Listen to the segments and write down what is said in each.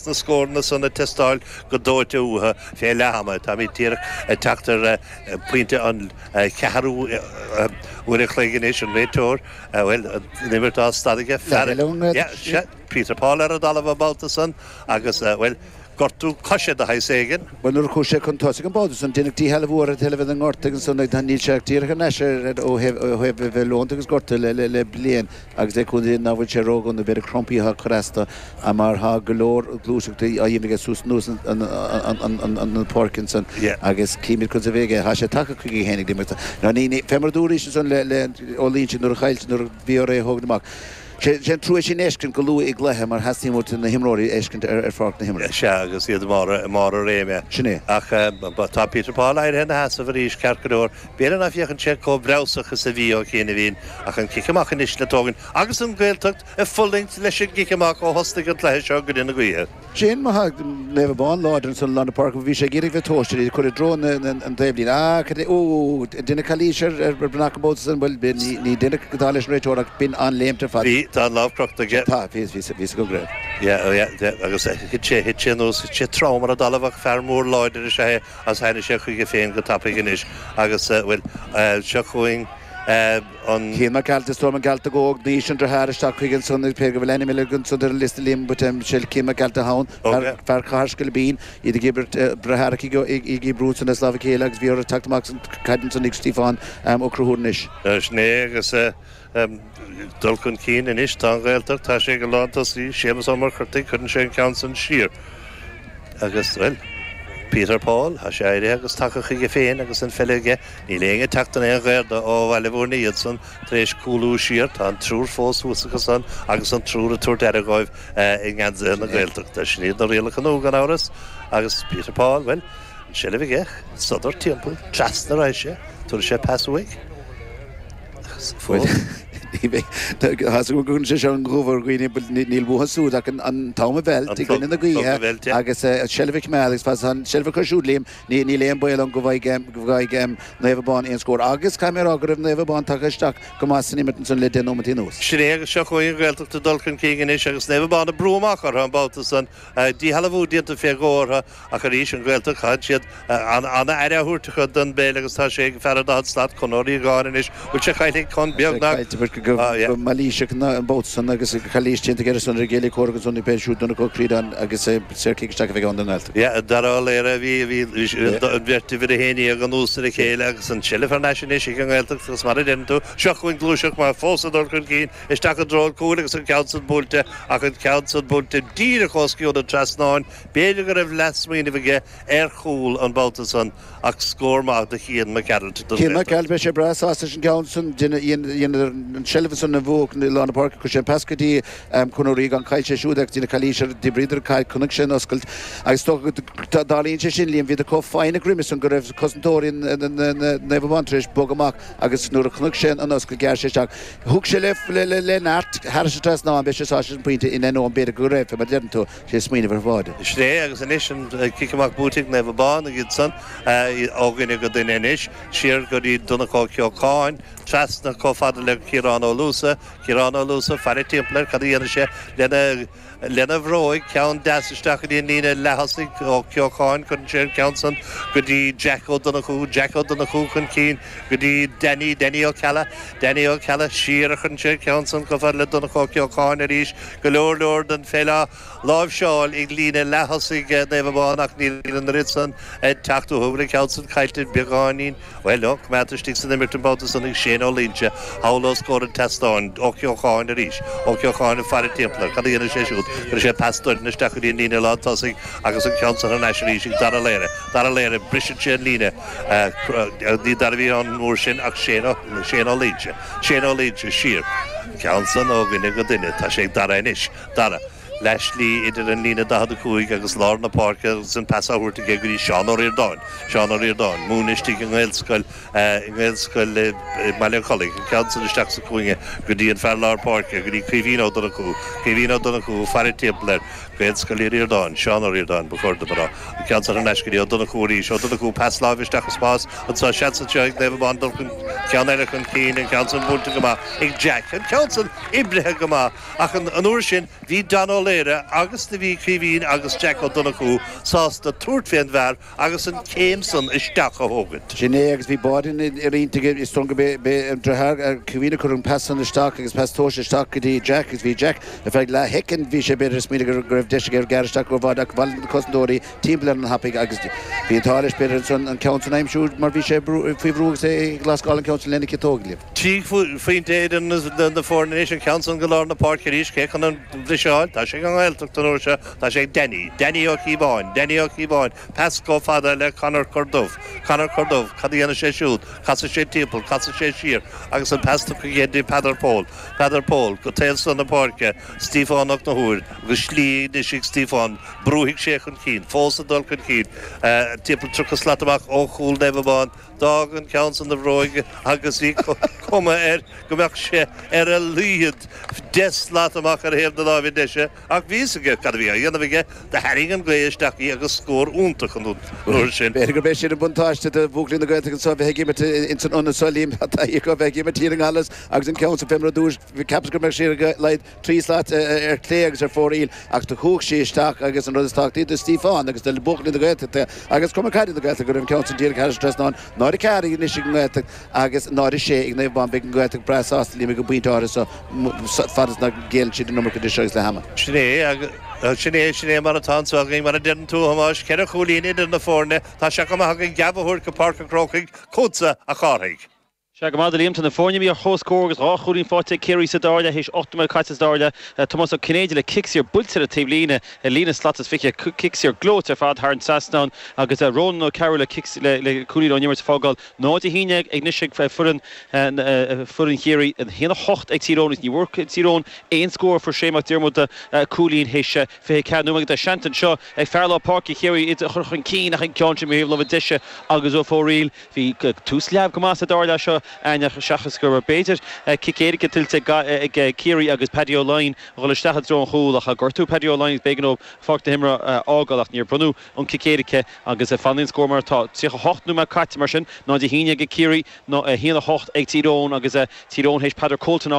na scóranna san ag teastáil go dóite uathu fé leath ama. Táimid díreach ag teacht ar phointe an cheathrú uair an chloig anois, an réiteoir, bhuel, an imirt á stad aige, fear Peter Paul ar an dtalamh an babhta san agus, bhuel, gortú coise de shaghas éigin. Bhuel, nuair a chuaigh sé chun tosaigh an babhta san, deineadh díshealbhú ar an tseilbh ina ngort agus níl sé ach díreach thar n-ais ó thaobh a bheith leonta agus gortaithe le bliain. agus le cúnamh Dé nach bhfuil sé ró-dhona an mhéid Trumpaíochta atá curtha astu, ach mar tá go leor gluaiseachtaí á dhéanamh aige suas anuas an pháirc ansan agus címid conas a bheidh aige. Tá sé tagtha chuige féin ag deireadh an scéil. Ní, ní, fé mar a dúraís ansan le, le, Ó Loingsigh nuair a chaill, nuair a bhí orthu é a thógaint amach, sé, sé an trua é sin a fheiscint go luath i gcluiche mar teastaíonn uait na himreoirí a fheiscint ar, ar pháirc na himeartha. Sea, agus iad i mbarr, i mbarr a réime. Sin é. Ach tá Peter Paul éirithe ina sheasamh arís, ceart go leor, B'fhéidir nach bhféachann sé chomh breabhsach is a bhí ó chianaibhín, ach an cic amach anois le tógaint agus an Ghaeltacht ag fulaingt leis an gcic amach ó thosaigh an cluiche seo i gcoinne na gaoithe. Sin é mar tá Naomh Abán láidir ansan i lár na páirce agus bhí sé ag iarraidh a bheith tomhaisteach, ag cur i dtreo an taobhlíne. Á, cad é, úú, an deineadh calaois ar Breathnach an babhta san? Bhuel, b'fhéidir, ní, ní deineadh dar leis an réiteoir ach b'in an-léimt ar fad. Bhí, tá an lámh crochta aige. Tá, bhí, bhí, bhíos go gréine. Yeah, oh yeah, yeah, agus thit sé, thit sé anuas, thit sé trom ar an dtalamh ach fear mór láidir is ea é. agus tháinig sé chuige féin go tapaidh anois agus, bhuel, seo chugainn Cian Mac Gearailt, is dóigh liom, an Gearaltach óg anois an driotháir isteach chuige ansan cé go bhfuil ainm eile againn san ar an liosta Liam Mhic Sheil Cian Mac Gearailt atá ann, fear Chathair Scoilbín, iad ag obair breith Earcaigh í gCíb Rún san as lámha a chéile agus bhí orthu teacht amach an chaid ansan ag Stiofán Ó Conchúir anois. Sin é agus. dul chun cinn anois. Tá an Ghaeltacht, tá sé go lántosaí. Séamus Ó Muircheartaigh, cuireann sé an ceann san siar. Agus, bhuel, Peter Paul, tá sé éirithe agus tagtha chuige féin agus an pheil aige. Níl éinne ag teacht in aon ghaor dó ó Bhaile Bhúirne iadsan tar éis cúlú siar. Tá an triúr fós thuas acu san agus an triúr ag tabhairt aire dhóibh i ngeansaithe na Gaeltachta. Sin iad na rialacha nua, gan amhras. Agus Peter Paul, bhuel, an tseilbh aige, sodar timpeall, trasna, rachaidh sé, tabharfaidh sé pas uaidh. Bhuel, ní bheidh. Tá's agam go gcuireann sé seo an gomh ar dhaoine, but níl uathu siúd ach an t-am a mheilt i gcoinne na gaoithe agus an tseilbh a choimeád agus fad is atá an tseilbh acu siúd, Liam, níl aon baol ann go bhfaighidh Naomh Abán aon scór. Agus caithfidh mé a rá go raibh Naomh Abán tagtha isteach go maith san imirt ansan le deich nóimeataí anuas. Sin é agus seo chugainn an Ghaeltacht ag dul chun cinn anois agus Naomh Abán ag brú amach orthu an babhta san. Díshealbhú déanta fé dhó orthu. Ach arís, an Ghaeltacht, caitheann siad an-aire a thabhairt don bpeil agus tá sé ag fear an daichead slat Conor Ó Riagáin anois. Bhuel, sé caillte aige Conn beagnach, yeah. Go mailíseach ná an babhta san agus calaois déanta aige ar son ar a chéile comhraic agus ionadaí pé siúd Donncha Ó Críodáin agus é saorchic isteach a bheidh ann don nGaeltacht. Yeah, Dara Ó Laoire a bhí, a bhí, bhí sé, an bheirt uimhir a haon déag anuas ar a chéile agus an tseilbh thar n-ais anois ag an nGaeltacht agus mar a deireann tú, seo chugainn gluaiseacht mhear fós ag dul chun cinn isteach i dtreo an chúil agus an ceann san buailte ach an ceann san buailte díreach os cionn an trasnáin B'fhéidir go raibh leathsmaoineamh aige ar chúl an babhta san ach scór maith do Chian Mac Gearailt don Cian Mac Gearailt, beidh sé breá sásta leis an gceann san, dheineadar an seilbh san a bhuachaint i lár na páirce, chuir sé an pas go dtí Conor Ó Riagáin, chaill sé siúd agus deineadh calaois air, d'oibríodar an chaid, chonaic sé an oscailt agus is dócha go dtarlaíonn sé sin, Liam, de dheasca, faoi mar a deirimse go raibh cosantóirí Naomh Abán tar éis bog amach agus nuair a chonaic sé an oscailt ghearr sé isteach, thug sé le neart thar an trasnán, beidh sé sásta leis an bpointe in ainneoin b'fhéidir go raibh, fé mar a deireann tú. leathsmaoineamh ar bháide. Sin é agus anois an cic amach buailte ag Naomh Abán agus iadsan ó dhuine go duine anois, siar go dtí Donncha Ó Ceocháin, trasna chomh fada le Ciarán Ó Luasa, Ciarán Ó Luasa ag faire timpeall air, cad a dhéanfaidh sé lena bhróig, ceann deas isteach go dtí an líne leath-thosaigh, Ó Ceocháin, cuireann sé an ceann san go dtí Jack Ó Donnchú, Jack Ó Donnchú chun cinn go dtí Danny, Danny Ó Ceallaigh, Danny Ó Ceallaigh, siar a chuireann sé an ceann san chomh fada le Donncha Ó Ceocháin arís, Go leor leor den pheil á láimhseáil ag líne leath-thosaigh Naomh Abán ach níl an oiread san ag teacht uathu go fóill, an ceann san caillte beagáinín. Bhuel ó, coimeádta istigh san imirt an babhta san ag Shane Ó Duinnín thall os comhair an tseastáin. Ó Ceocháin arís. Ó Ceocháin ag faire timpeall air. Cad a dhéanfaidh sé siúd? Cuireann sé pas doirn isteach go dtí an líne lán tosaigh agus an ceann san thar n-ais arís ag Dara Ó Laoire. Dara Ó Laoire, briseann sé an líne. Ní Dara a bhí ann an uair sin ach Shane Ó Duinnín. Shane Ó Duinnín, siar an ceann san, ó dhuine go duine. Tá sé ag Dara anois. Dara, leath slí idir an líne 45 agus lár na páirce agus an pas tabhartha aige go dtí Seán Ó Ríordáin. Seán Ó Ríordáin, ag múineadh istigh i nGaelscoil, i nGaelscoil i mBaile an Chollaigh. An ceann san isteach sa chúinne go dtí an fear lár páirce, go dtí Caoimhín Ó Donnchú. Caoimhín Ó Donnchú, ag faire timpeall air. Gaelscoil Uí Ríordáin, Seán Ó Ríordáin, Ba chóir dom a rá, an ceann san thar n-ais go dtí Ó Donnchú arís, Ó Donnchú, Pas láimhe isteach i spás anseo, seans anseo ag Naomh Abán, dul chun, ceann eile chun cinn, an ceann san buailte go maith ag Jack, an ceann san oibrithe go maith, ach an uair sin bhí Dara Ó Laoire agus do bhí Caoimhín agus Jack Ó Donnchú sásta tabhairt fé an bhfear, agus an céim san isteach a thógaint. Sin é agus bhí bád ina intinn, is dóigh liom gurb é an dritheár Caoimhín a chuir an pas san isteach agus pas tomhaiste isteach go dtí Jack agus bhí Jack ar feadh leathshoicind bhí sé b'fhéidir ag smaoineamh go raibh deis aige ar ghearradh isteach ar bháide ach bhí na cosantóirí timpeall air an-tapaidh agus bhí an t-ádh leis b'fhéidir ansan an ceann san a aimsiú mar bhí sé faoi bhrú agus é ag lascadh an ceann san lena chiotóg, Liam. Trí phointe idir na foirne anois an ceann san go lár na páirce arís cé chun an bhriseadh a fháil tá sé ag an nGaeltacht an uair seo Tá sé ag Danny, Danny Ó Cíobháin, Danny Ó Cíobháin, pas chomh fada le Conor Corduff, Conor Corduff, cad a dhéanann sé siúd, casann sé timpeall, casann sé siar agus an pas tugtha aige do Peadar Pól, Peadar Pól, go taobh so na páirce, Stiofán Ó Conchúir agus slí anois ag Stiofán, brúfaidh sé chun cinn, fós ag dul chun cinn, timpeall tríocha slat amach ó chúl Naomh Abán, d'fhág an ceann san a bhróig agus bhí cuma air go mbeadh sé ar a laghad deich slat amach ar thaobh na láimhe deise. Ach bhí fhios aige cad a bhí á dhéanamh aige, do tharraing an gaoth isteach í agus scór iontach an uair sin. B'fhéidir gurb é sin an buntáiste do Bhuachaillí na Gaeltachta anso, bheith ag imirt ins an ionad so, Liam, tá a fhios acu, bheith ag imirt thiar i nGallarus agus an ceann san fé mar a dúrais, cheapas go mbeadh sí ar a laghad trí slat ar chlé agus ar fóraoil ach do chuach sí isteach agus an rud is tábhachtaí do Stiofán agus do Bhuachaillí na Gaeltachta agus Cumann Caide na Gaeltachta go raibh an ceann san díreach thairis trasnán, 0-4 anois ag an nGaeltacht. Agus 0-6 ag Naomh Abán, beidh an Ghaeltacht breá sásta léi go pointe áirithe, fad is nach ngéilleann siad an iomarca idir seo agus leath ama. Sin é, agus sin é, sin é mar atá anso againn. Mar a deireann tú, a Thomáis, ceithre chúilín idir na foirne, tá sé chomh maith againn geábh a thabhairt go Páirc an Chrócaigh chugatsa, a Chárthaigh. Sea go raibh maith agat, a Liam, tá na foirne imithe ar chomhscór agus dhá chúilín faighte ag Ciarraí sa dara leath, théis ocht nóiméad caite sa dara leath. Tomás Ó Cinnéide le cic saor buailte ar an taobh líne, ar líne slat is fiche, cic saor gleoite ar fad thar an trasnán, agus Rónán Ó Cearúill le cic le cúilín ón imirt ag fágáil. 0-11 anois ag foireann foireann Chiarraí, 1-8 ag Tír Eoghain. Ní bhfuair Tír Eoghain aon scór ó fuair Shea Mac Diarmada cúilín théis 24 nóiméad agus tá seans anseo ag fear lár páirce Chiarraí iad a chur chun cinn ach an ceann sin ar thaobh na láimhe deise agus ar fóraoil. Bhí tús leamh go maith sa dara leath seo ach seachas go raibh b'fhéidir cic éirice tuillte ag Ciarraí agus Paddy Ó Laighin a dhul isteach i dtreo an chúil ach gortaíodh Paddy Ó Laighin agus b'éigean dhó páirc na himeartha a fhágáil ach níor bronnadh an cic éirice agus fanfaidh an scór mar atá. Tríocha hocht nóiméad caite mar sin, 0-11 ag Ciarraí, a haon a hocht ag Tír Eoghain agus Tír Eoghain théis Peadar Ó Comhaltáin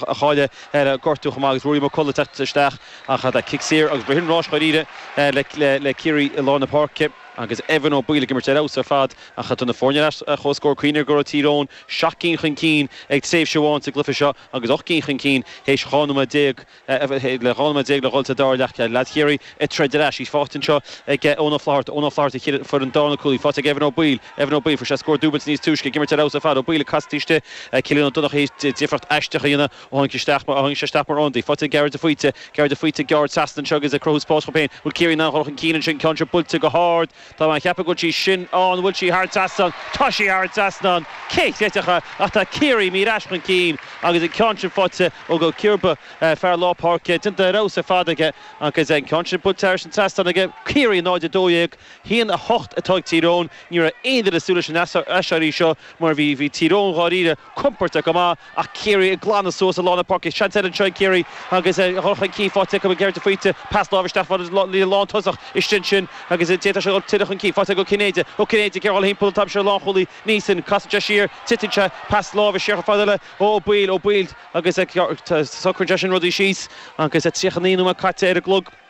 a chailleadh le gortú chomh maith agus Ruairí McCullagh teacht isteach ach tá cic saor agus b'shin rás dháiríre le Ciarraí i lár na páirce agus Evan Ó Baoill ag imirt ar fheabhas ar fad ach tá na foirne ar ais ar chomhscór cuimhnigh go raibh Tír Eoghain seacht gcinn chun cinn ag tréimhse amháin sa gcluiche seo agus ocht gcinn chun cinn théis 12 nóiméad. le 12 nóiméad le dhul sa dara leath. Chéad leath, Ciarraí ag troid ar ais. Í faighte anseo ag Eoin Ó Flatharta. Eoin Ó Flatharta, Chéile an Foireann, Dár na cúlaí. Faighte ag Evan Ó Baoill. Evan Ó Baoill, fuair sé scór dúbailte níos túisce, ag imirt ar fheabhas ar fad. Ó Baoill ag casadh istigh. Cillian Ó Donnchadha, difríocht aisteach a dhéanamh ó tháinig sé isteach mar, ó tháinig sé isteach mar ionadaí. Faighte ag Gearóid de Faoite. Gearóid de Faoite ag gearradh trasna anseo agus ag cruthú spáis dhó féin. Bhfuil Ciarraí in ann dhul chun cinn anseo? Ceann seo buailte go hard. Tá mé ag ceapadh go bhfuil sí sin ann. An bhfuil sí thar trasnán? Tá sí thar an trasnán! Cé chreidfeadh é? Ach tá Ciarraí imithe ar ais chun cinn agus an ceann sin faighte ag Dónal Ó Ciarba, fear lár páirce. Déanta ar fheabhas ar fad aige agus an ceann sin buailte thairis an trasnán aige. Ciarraí 0-12, 1-8 atá ag Tír Eoghain. Ní raibh aon duine ag súil leis an aiséirí seo mar bhí Tír Eoghain dháiríre. compordach go maith ach Ciarraí ag glanadh suas i lár na páirce. Seans eile anseo ag Ciarraí agus a dhul chun cinn faighte acu ag Gearóid de Faoite, pas láimhe isteach fada leis an lántosach istigh ansin agus d'fhéadfadh sé a dhul tuilleadh chun cinn. Faighte ag Ó Cinnéide. Ó Cinnéide, ag iarraidh a ghabháil timpeall an t-am seo ar lánchúlaí Neeson. Casann sé siar, titeann sé, pas láimhe siar chomh fada le Ó Baoill. Ó Baoill agus socraíonn sé sin rudaí síos agus 39 nóiméad caite ar an gclog.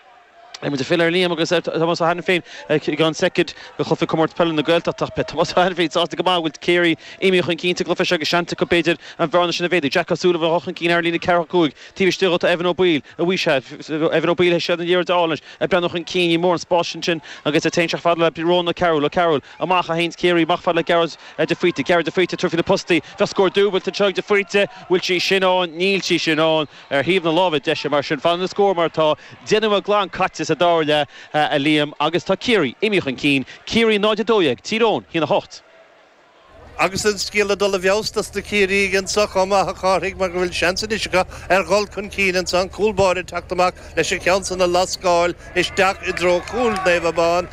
Beidh muid ag filleadh ar Liam agus ar Thomás Ó hAiniféin i gceann soicind go Cluiche Comórtas Peile na Gaeltachta ach beidh Tomás Ó hAiniféin sásta go maith go bhfuil Ciarraí imithe chun cinn sa gcluiche seo agus seans acu, b'fhéidir, an bhearna sin a mhéadú. Jack Ó Súilleabháin dhul chun cinn thar an líne ceathrú cúig. Taobh istigh dhó tá Evan Ó Baoill, a bhuí sea, Evan Ó Baoill i seilbh na liathróide álainn leis, ag breathnú chun cinn. Ní mór an spás ansin agus é féin teacht fada le Rónán Ó Cearúil. Ó Cearúil, amach, a théann Ciarraí amach fada le Gearóid de Faoite. Gearóid de Faoite ag tabhairt faoi na postaí. Bheadh scór dúbailte anseo ag de Faoite. Bhfuil sí sin ann? Níl sí sin ann. Ar thaobh na láimhe deise, mar sin, fanann na scóir mar atá, deich nóiméad glan caite sa dara leath, a Liam, agus tá Ciarraí imithe chun cinn, Ciarraí 0, 12, Tír Eoghain 1, 8. Agus an scéal ag dul i bhfeabhas dos na Ciarraígh anseo chomh maith, a Chárthaigh, mar go bhfuil seans anois acu ar dhul chun cinn anseo, an cúl báire ag teacht amach leis an cheann san á lascáil isteach i dtreo chúl Naomh Abán.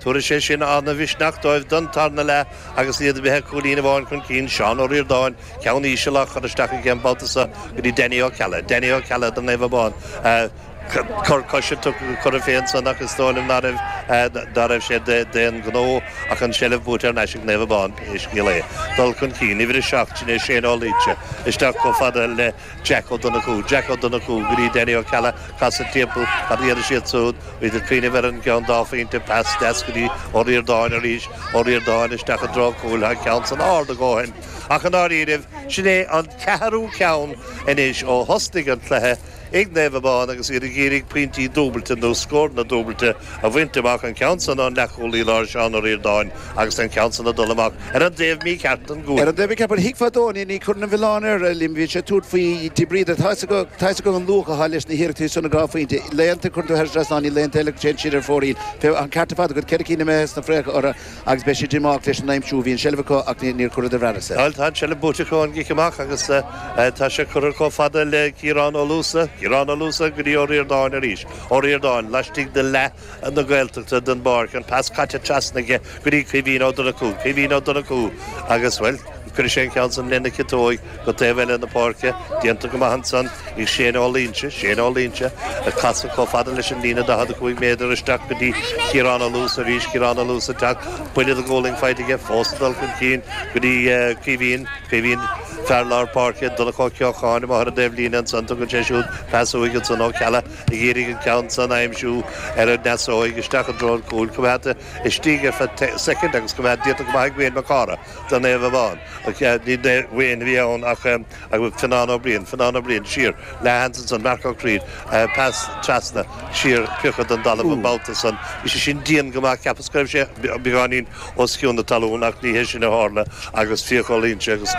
Tabharfaidh sé sin an-mhisneach dóibh don tarna leath agus iad a bheith cúilín amháin chun cinn, Seán Ó Ríordáin, ceann íseal, á chur isteach aige an babhta seo go dtí Danny Ó Ceallaigh. Danny Ó Ceallaigh do Naomh Abán. Cor coise tugtha go Cora Finne ansan ach is dóigh liom ná raibh sé d'aon ghnó ach an tseilbh buaite thar n-ais ag Naomh Abán pé scéal é. Dul chun cinn, uimhir a seacht, sin é Shane Ó Luínse, isteach chomh fada le Jack Ó Donnchú, Jack Ó Donnchú, go dtí Danny Ó Ceallaigh, casadh timpeall, cad a dhéanfaidh siad súd, bhfuilid ag cuimhneamh ar an gceann dá phointe, pas deas go dtí Ó Ríordáin arís, Ó Ríordáin isteach i dtreo cúil, tá an ceann san ard a dhóthain, ach i ndáiríribh, sin é an ceathrú ceann anois ó thosnaigh an cluiche, ag Naomh Abán agus iad ag iarraidh pointí dúbailte nó scóranna dúbailte, a bhaint amach, an ceann san ón leathchúlaí láir Seán Ó Ríordáin agus an ceann san ag dul amach ar an dtaobh mícheart den gcuaille. Ar an dtaobh mícheart, bhuel, thuigfeá dó, ní chuirfinn aon mhilleán air, bhíonn sé ag tabhairt faoi de bhrí, tá a fhios agam an luach atá leis na hiarrachtaí san, an dhá phointe. Laethanta a chuireann tú thar an trasnán, laethanta eile téann siad ar an bhfóraoil. Bheadh an ceart ar fad agat, ceithre cinn imithe sna fraocha orthu agus beidh siad díomách leis an aimsiú. Bhí an tseilbh acu ach níor chuireadar thairis. Bhuel, tá an tseilbh buaite acu ón gcic amach agus tá sé curtha chomh fada le Ciarán Ó Luasa, Ciarán Ó Luasa go dtí Ó Ríordáin arís. Ó Ríordáin, laistigh de leath na Gaeltachta den bpáirc, an pas caite trasna aige go dtí Caoimhín Ó Donnchú, Caoimhín Ó Donnchú agus, bhuel, cuirfidh sé an ceann san lena chiotóig go taobh eile na páirce, déanta go maith ansan ag Shane Ó Luínse, Shane Ó Luínse ag casadh chomh fada leis an líne 45 méadar isteach go dtí Ciarán Ó Luasa arís, Ciarán Ó Luasa ag teacht, buille de ghualainn faighte aige, fós ag dul chun cinn go dtí Caoimhín, Caoimhín. Fear lár páirce, Donncha Ó Ceocháin, amach ar an taobhlíne ansan, tugann sé siúd pas uaidh ansan, Ó Ceallaigh ag iarraidh an ceann san a aimsiú ar an ndeasóig, isteach i dtreo an chúil, coimeádta istigh ar feadh soicind agus coimeád déanta go maith ag Wayne Mac Cárthaigh do Naomh Abán, ní Wayne a bhí ann ach Fionnán Ó Briain, Fionnán Ó Briain siar le hands ansan, Marc Ó Críod, pas trasna siar, priocadh don dtalamh an babhta san, bhí sé sin dian go maith, cheapas go raibh sé beagáinín os cionn na talún, ach ní hé sin a tharla agus fiacail inste agus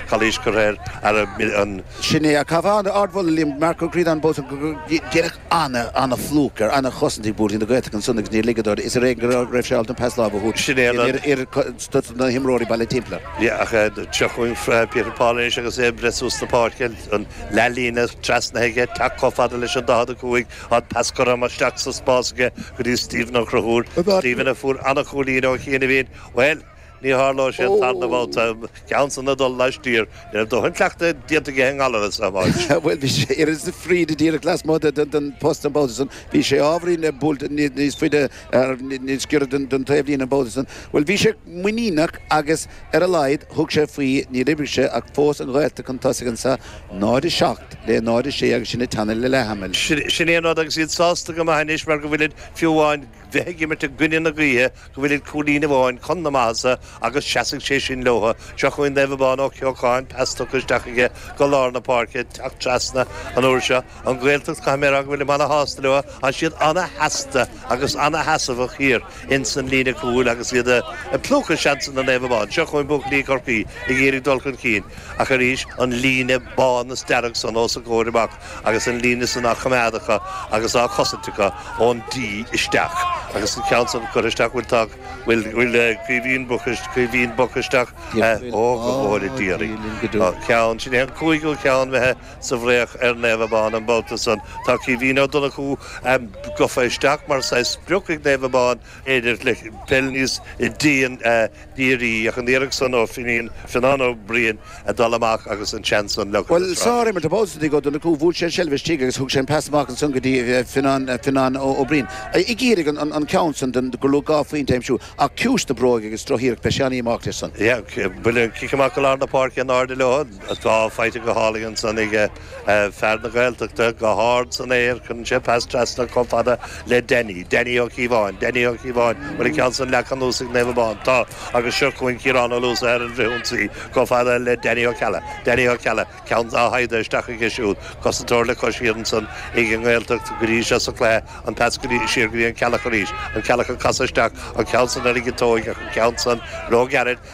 calaois curtha air. Sin é. Ach chaithfeá an ardmholadh, Liam, Marc Ó Críod bós ag rá go díreach an-phlúchadh, an-chosaint ag buachaillí na Gaeltachta ansan agus níor ligeadar is ar éigin go raibh sé ábalta an pas láimhe a thabhairt Sin é an rud. ar stuif na himreoirí bailithe timpeall air. Ach seo chugainn Peter Paul arís agus é ag rith suas na páirce, an leath-líne trasnaithe aige, teacht chomh fada leis an 45, Tá pas curtha isteach sa spás aige go dtí Stephen Ó Conchúir. Stephen a fuair an-chúilín ó chianaibhín. Bhuel, ní tharlóidh sé an tarna babhta. Ceann san ag dul laistiar. Ní raibh dóthain cleachtadh déanta aige i nGallaras, a Thomáis. Bhuel, bhí sé oiread na fríde díreach lasmuigh den phost an babhta san. Bhí sé ábhairín ag buailte níos faide, níos giorra don taobhlíne an babhta san. Bhuel, bhí sé muiníneach agus ar a laghad thug sé faoi. Níor oibrigh sé ach fós an Ghaeltacht chun tosaigh anseo, 0:07. le 0:06 agus sinn ag teannadh le leath ama. Sin é an rud, agus iad sásta go maith anois mar go bhfuilid, fiú amháin, bheith ag imirt i gcoinne na gaoithe, go bhfuilid cúilín amháin chun na maitheasa agus seasfaidh sé sin leotha. Seo chugainn Naomh Abán Ó Ceocháin, pas tugtha isteach aige go lár na páirce, teacht trasna an uair seo. An Ghaeltacht, caithfidh mé a rá go bhfuilim ana-shásta leo, tánn siad ana-sheasta agus ana-sheasamhach thiar. ins an líne cúil agus iad ag plúchadh seansanna Naomh Abán. Seo chugainn buachaillí Chorcaí ag iarraidh dul chun cinn, ach arís an líne bán is dearg san os a gcomhair amach agus an líne san á choimeád acu agus á chosaint acu ón D isteach agus an ceann san curtha isteach, bhuel tá, bhuel Caoimhín Boc isteach, óg a mhór a d'iarraidh an ceann, sin é an cúigiú ceann imithe. sa bhfraoch ar Naomh Abán an babhta san. Tá Caoimhín Ó Donnchú gofa isteach mar saghas sprioc ag Naomh Abán b'fhéidir le peil níos dírí ach an iarracht san ó Finian, Fionnán Ó Briain ag dul amach agus an seans san leagtha Bhuel, sárimirt an babhta san Ó Donnchú, bhuaigh sé an seilbh istigh agus thug sé an pas amach ansan go dtí Fionnán Ó Briain ag iarraidh an ceann san gur luach dhá phointe a aimsiú ach ciumhais na bróige agus droch iarracht beidh sé ana-dhíomách leis san. Bhuel, cic amach go lár na páirce in airde leo. Tá faighte go hálainn ansan ag fear na Gaeltachta, go hard san aer, cuireann sé pas trasna chomh fada le Denny, Denny Ó Cíobháin, Denny Ó Cíobháin, bhuel, an ceann san leagtha anuas ag Naomh Abán, tá, agus seo chugainn Ciarán Ó Luasa ar an bhfrithionsaí chomh fada le Denny Ó Ceallaigh, Denny Ó Ceallaigh, ceann á shaighdeadh isteach aige siúd, cosantóir le cois thiar ansan ag an nGaeltacht go dtí seo sa chluiche, an pas go dtí, siar go dtí an Ceallach arís, an Ceallach ag casadh isteach, an ceann san ar an gciotóig ach an ceann san, róghairid,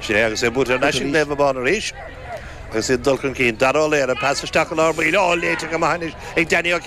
Sin é agus é buaite ar ais ag Naomh Abán arís agus iad ag dul chun cinn. Dara Ó Laoghaire, pas isteach i lár baill, á léiteach go maith anois ag Danny Ó Ceallaigh.